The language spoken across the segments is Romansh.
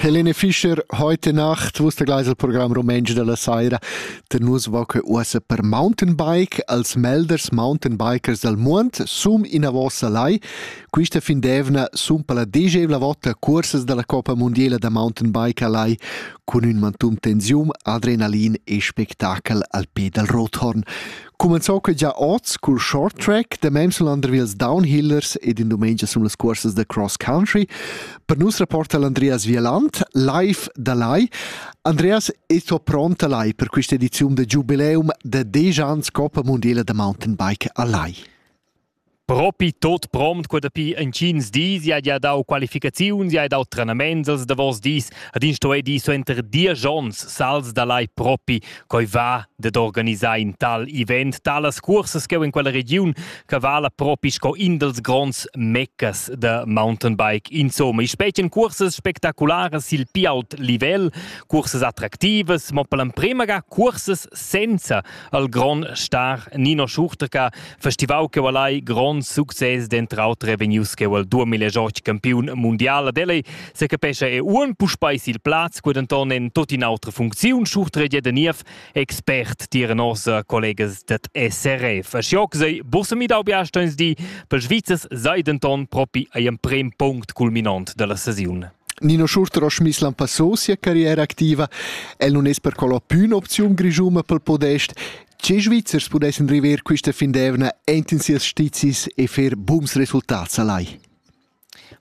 Helene Fischer, heute Nacht, wo ist der Gleisel-Programm Rumänsch della Saira. Der nus va que uossa per Mountainbike als melders Mountainbikers del muond sum ina vossa lai. Quista fin d'evna sun per la degevla vota cursas della Coppa Mondiela da Mountainbike alai cun ün mantum tensium, adrenalin e spectacel al pe dal Rothorn. Cumenzò que già oz cul short track da mems l'Andrevils Downhillers ed in dumengia sun las cuorsas da cross country. Per nus rapporta l'Andreas Vieland live da lai. Andreas, e sto pronta lai per questa edizione da giubileum da 10 ans Coppa Mondiala da Mountainbike a Lai. Propi tot pront qua dapi intgins dis ja gia dau qualificaziuns, ja dau trenaments els davos dis ed ins sto dir suenter diesch onns sals da lai propi coi va dad organisar in tal event. Talas cursas cheu in quella regiun che vala propi sco in dels gronds meccas da mountainbike. Insomma, i spetgan cursas spectacularas sil pi ault livel, cursas attractivas, mo per l'emprema ga cursas senza al grond star Nino Schurterka, festivau che vala grond success dentr autre vegnius che al 2008 campiun mundial ad elei se capescha e uon puspei sil plaz qued anton en tot in autra funcziun Schurtre de Niev expert tier nosa collegas dat SRF. Schioc sei bussemi dau biastoins di per Schweizers sei denton propi ei emprem punct culminant della sesiun. Nino Schurter ha schmiss lampassò sia carriera activa. El non es percolla püna opziun grischuma pel podest. Che Svizzers pudessan river quista fin d'evna enten sias stizis e fer bums resultats alai?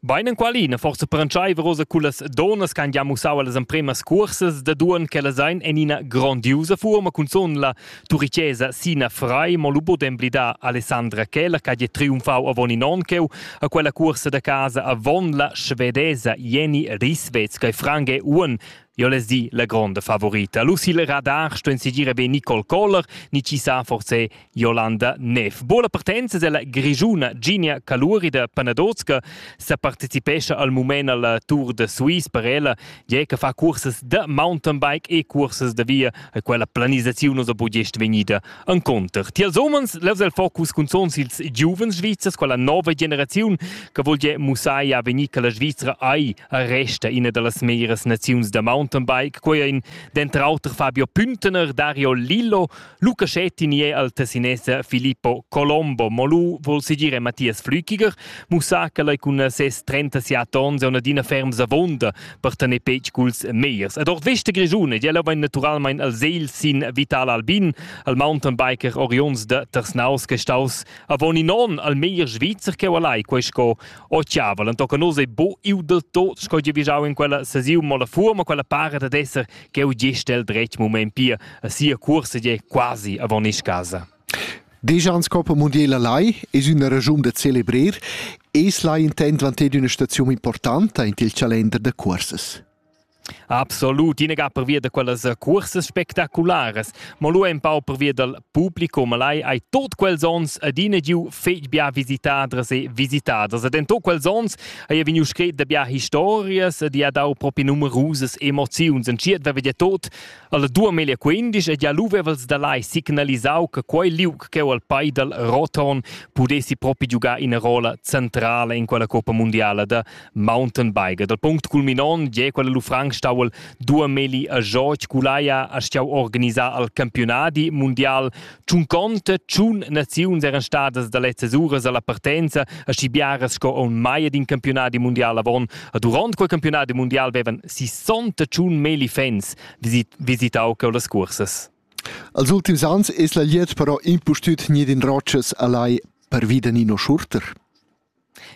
Bein en qualina forse per entscheiver rosa cullas donas che han già mussau las empremas cursas da duan che las ein en ina grandiusa forma cun son la Turicesa Sina Frei mo lu bod emblidar Alessandra Keller che ha triumfau avon in onn cheu a quella cuorsa da casa avon la svedesa Jenny Risvets che Frange Uon Jo les di la gronda favorita. Lucille Radar sto insigire be Nicole Koller, ni ci sa forse Jolanda Neff. Bola partenza della grigiuna Ginia Caluri da Panadozka sa partecipescha al mument al Tour de Suisse per ella Tgei che fa cursas da mountainbike e cursas da via e quella planisaziun ussa bu gest vegnida enconter. Tiels umens levs el focus cun zons ils giuvens svizzers, quella nova generaziun che vogl ge mussar ja vegnir che la Svizzera ei resta ina dallas meglieras naziuns da mountainbike. Quei ein denter auter Fabio Püntener, Dario Lillo Luca Schetti ni è al Tessinese Filippo Colombo. Molu vul segir Matthias Flüchiger, mussà che ei cun ses 37 onns è adina ferms avonda per tener petg culs meiers. Ed ord vesta grischuna ella vegn naturalmein al segl sin Vital Albin, al mountainbiker Orions de Tersnaus che staus avon in onn al meier svizzer che lai quei sco ochiavel. En tocca nos ei bo iu del tot sco giu vigiau in quella sesiun mo la fuoma, quella pare ad esser ch'eu gist el dretg mument pia a sia cuorsa gie quasi avon isch casa. Deschans Coppa Mondiela lai es üna ragiun da celebrer. Es lai intent dvanter üna staziun importanta in il calender da cursas. Absolut, ina ga pervia da quellas cursas spectacularas, ma lu empau pervia dal publicum lai ei tot quels ons adina giu fetg bia visitadras e visitaders ed en tot quels ons hai vegniu scret da bia historias ed ha dau propi numerusas emoziuns en tschiet vevi tot alla 2015 ed ja lu vevels da lai signalisau che quei liug cheu al Paidal Roton pudessi propi giugar ina rola centrala in quella Coppa Mundiala da Mountainbiker. Dal punct culminont gie quella lu franc stauel dua meli a George Culaia a stiau organisar al campionadi mundial. Tschun conte, tschun naziuns eran stadas da lezzas uras alla partenza a schi biaras sco on mai d'in campionadi mundial avon. A duront quel campionadi mundial vevan 68 meli fans visitau cau las cursas. Als ultims ans es la liet però impustüt nie in roccias allai per vida Nino Schurter.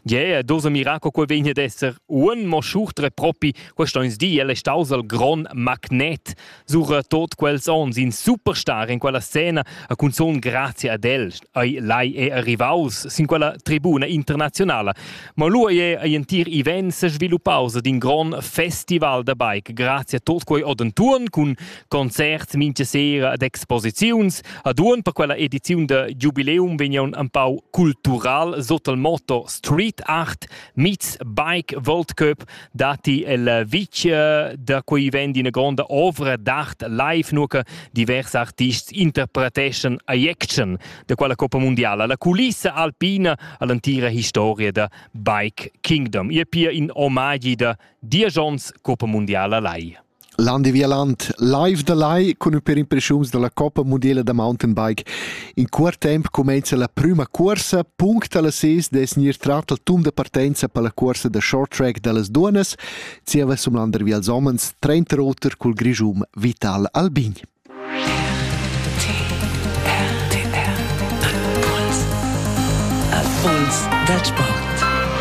Yeah, dos a mirar co quel vegn ad esser un mo schurtre propi quest ons di el è staus al gron magnet sur eh, tot quels ons in superstar in quella scena a cunzon grazie ad el ai lai è arrivaus sin quella tribuna internazionala ma lu è ei entir event se sviluppaus ad in gron festival da bike grazie a tot quei odenturn cun concerts mincha sera ed exposiziuns. A duon per quella ediziun da Jubileum vegnan un pau cultural sot il motto Street Art Meets Bike World Cup dati el vic da quei vend ina gronda ovra d'art live nur che diversi artists interpreteschan a action da quella Coppa Mondiala, la culissa alpina all'antira historia da Bike Kingdom. Ihr pia in omagi da Diajons Coppa Mondiala lai. Landi Vialant live da lai cun ün per impreschuns da la Coppa mundiala da mountainbike. In cuort temp cumainza la prüma cuorsa, punct a las ses dess gnir trat al tum da partenza per la cuorsa da short track da las duonnas, zieva sum landervi als homens trenta roter cul grischun Vital Albin. Impuls dal sport.